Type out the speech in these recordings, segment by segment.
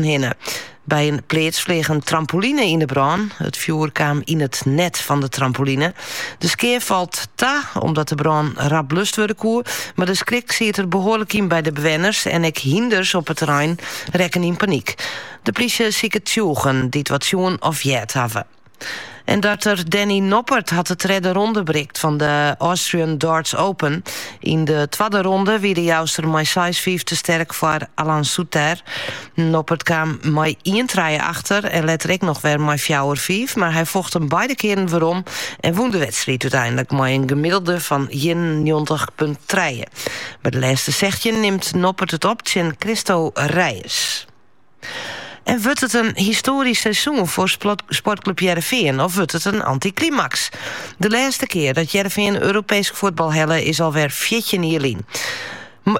hinne. By in pleats fleagen een trampoline yn de brân. It fjoer kaam yn it net fan de trampoline. De skea falt ta, omdat de brân rap blust wurde koe. Mar de skrik siet der behoarlik yn by de bewenners en ek hynders op it terrein rekken yn panyk. De plysje siket tsjûgen, dy't wat sjoen of heard hawwe. En darter Danny Noppert hat de tredde ronde berikt fan de Austrian Darts Open. Yn de twadde ronde wie de Jouster mei 6-5 te sterk foar Alan Soutar. Noppert kaam mei ien trije achter en letter ek noch wer mei fjouwer fiif, mar hy focht him beide kearen werom en wûn de wedstriid úteinlik mei in gemiddelde fan ienennjoggentich punt trije. By de lêste sechstjin nimt Noppert it op tsjin Cristo Reyes. En wurdt it in histoarysk seizoen foar sportklup Hearrenfean of wurdt it in antiklimaks? De lêste kear dat Hearrenfean Europeesk fuotbal helle is alwer fjirtjin jier lyn.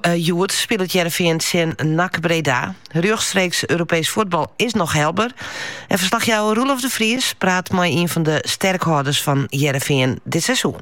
Hjoed spilet Hearrenfean tsjin NAC Breda. Rjochtstreeks Europeesk fuotbal is noch helber. En verslachjouwer Roelof de Vries praat mei ien fan de sterkhâlders fan Hearrenfean dit seizoen.